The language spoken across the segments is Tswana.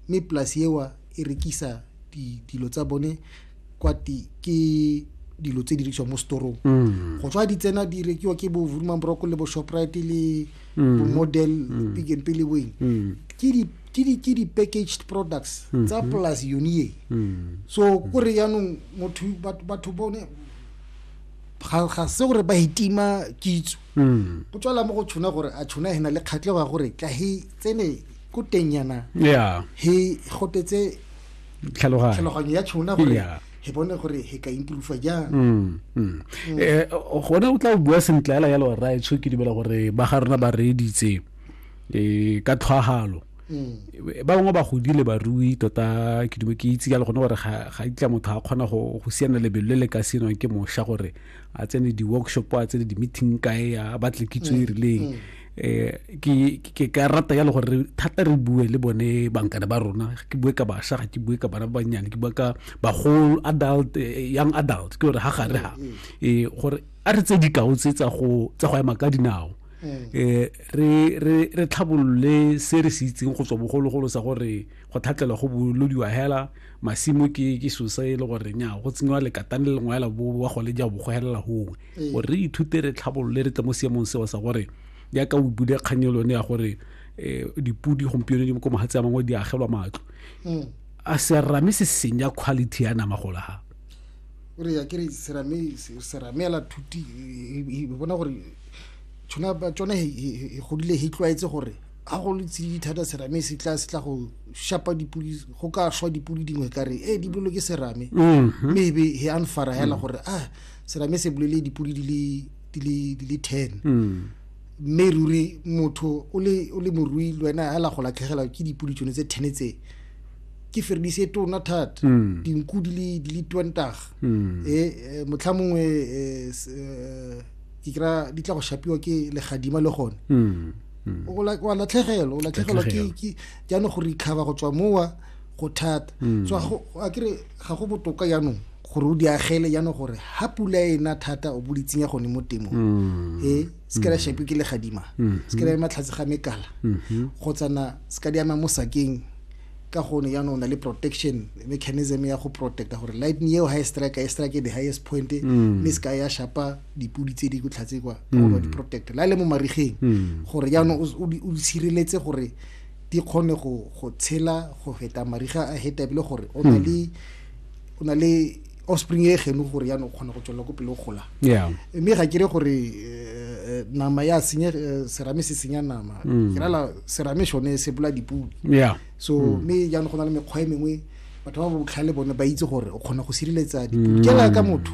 mme polasi eo e rekisa dilo tsa bone kwa ke dilo tse di rekisiwang mo storong mm. go tswa di tsena di rekiwa ke bo vurumang broko le bo shoprite le mm. bo model mm. pick and pele weng ke di-packaged products mm-hmm. tsa polasi yone e so kore yaanong motho batho bone ga se gore ba itima kitso go tswala mo go tshona gore a tshona e na le kgatlhego ya gore tla he tsene ko teng yana yeah he gotetse tlhaloganyo tlhaloganyo ya tšhona gore yeah he bone gore he ka improve jang mm, mm. mm. eh gone o tla o bua sentle ela yalo ra etsho ke dibela gore ba ga rona ba reeditse eh ka tlhwagalo mm. ba bangwe ba godile barui tota ke dume ke itse jalo gone gore ga ga itla motho a kgona go go siana lebelo le le ka senwang ke mosha gore a tsene di-workshop a tsene di-meeting kae a batle kitso e mm, rileng eh ke ke ka rata ya le gore thata re bue le bone bankana ba rona ke bue ka basha ga ke bue ka bana ba banyane ke bue ka ba whole adult eh, young adult ke gore ha gare ha mm-hmm. eh gore a re tse dikao tse tsa go tsa go ema ka dinao mm. eh re re re tlhabolole se re se itseng go tswa bogologolo sa gore go thatlela go bolodiwa hela masimo ke ke sosa e le gore nya go tsenywa le katane le ngwa la bo wa go le ja bo go helela hongwe ee. gore re ithute re tlhabolole re tle mo seemong seo sa gore jaaka o bude kgang e lone ya gore um dipodi gompieno di ko magatse a mangwe di agelwa matlo mm. a serame se senya quality ya nama gola ga gore ya kere serame serame ela thuti e bona gore tshona tsone e godile e tlwaetse gore ga go letsididi thata serame se tla se tla go shapa dipodi go ka shwa dipodi dingwe ka re e di boloke serame mm-hmm. maybe e anfara hela mm. gore a ah, serame se bolele dipodi di le ten hmm. mme ruri motho o le morui le wena a la go latlhegelwa ke dipodi tsone tse ten tse ke feredise tona thata hmm. dinku di le twentar hmm. e eh, motlha mongwe eh, eh, ke kry di tla go shapiwa ke legadima le gone wa latlhegelwa o latlhegelwa ke jaanong go recover go tswa mowa go thata so a kere ga go botoka jaanong gore o di agele jaanong gore ha pula e na thata o bo di tsenya gone mo temong mm. e se ka la mm. shape ke legadima mm-hmm. se ka la ema tlhatse ga mekala mm-hmm. kgotsa na se ka di ama mo sakeng ka gone jaanong o na le protection mechanism ya go protecta gore lightning eo ha e strike e strike the highest point mm. mme se ka ya shapa dipudi tse di ko tlhatse kwa ka gore di protecte la le mo marigeng gore jaanong o sireletse gore di kgone go tshela go feta mariga a hetebile gore o na le mm. o na le offspring e geno gore ya no kgona go tswelela ko pele o gola mme ga kere gore eh, eh, nama ya senye eh, serame se senya nama mm. ke rala serame sone se bola dipudi so mm. mme jaanong go na le mekgwa e mengwe batho ba botlhale bone ba itse gore o kgona go sireletsa dipudi mm. jaaka motho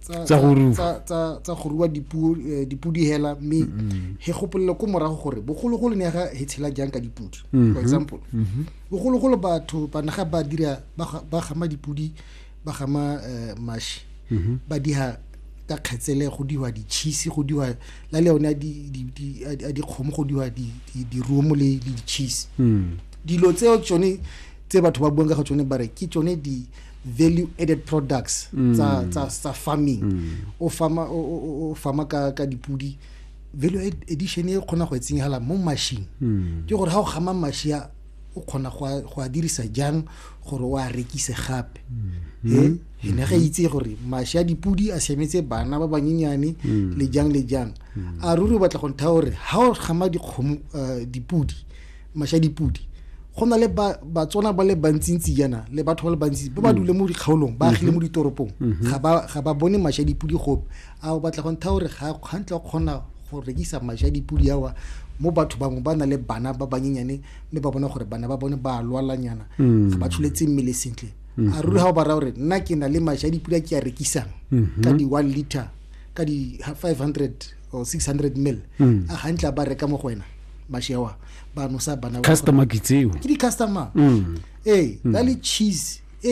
tsa go rua eh, dipudi hela mme he gopolele ko morago gore bogologolo ne ga he tshela jang ka dipudi for mm-hmm. example mm-hmm. bogologolo batho ba naga ba dira ba gama dipudi ba gama eh, mashi mm-hmm. ba diha ka kgetsele go diwa ditšhisi go diwa la le yone a dikgomo go diwa dirumo le ditšhisi mm. dilo tseo tsone tse batho ba buang ka ga tsone ba re ke tsone di value added products mm. tsa tsa tsa farming mm. o farma o farma ka ka dipudi value addition e khona go etsenyala mo machine mm. ke gore ha o gama mashia o khona go a dirisa jang gore o a rekise gape e ne ga itse gore mashia dipudi a semetse bana ba banyenyane le jang le jang a ruri o batla go ntha gore ha o gama dikgomo eh, dipudi Mashadipudi go na le batswana ba le bantsintsi jana le batho ba le bantsi ba ba mm. dule mo dikgaolong ba agile mo mm-hmm. ditoropong mm-hmm. ga ba bone mashadipudi gope a o batla go ntha gore gantla o kgona go rekisa mashadipudi awa mo batho bangwe ba na le bana ba banyenyane mme ba bona gore bana ba bone ba lwalanyana mm. ga ba tsholetse mmele sentle mm-hmm. a ruri ga o ba raya gore nna ke na le mashadipudi a ke a rekisang ka di-one liter ka di-five hundred or 600 mil mm. a gantla ba reka mo go wena mashewa ba nosa bana customer ke tseo ke di customer mm. ee mm. ba le cheese e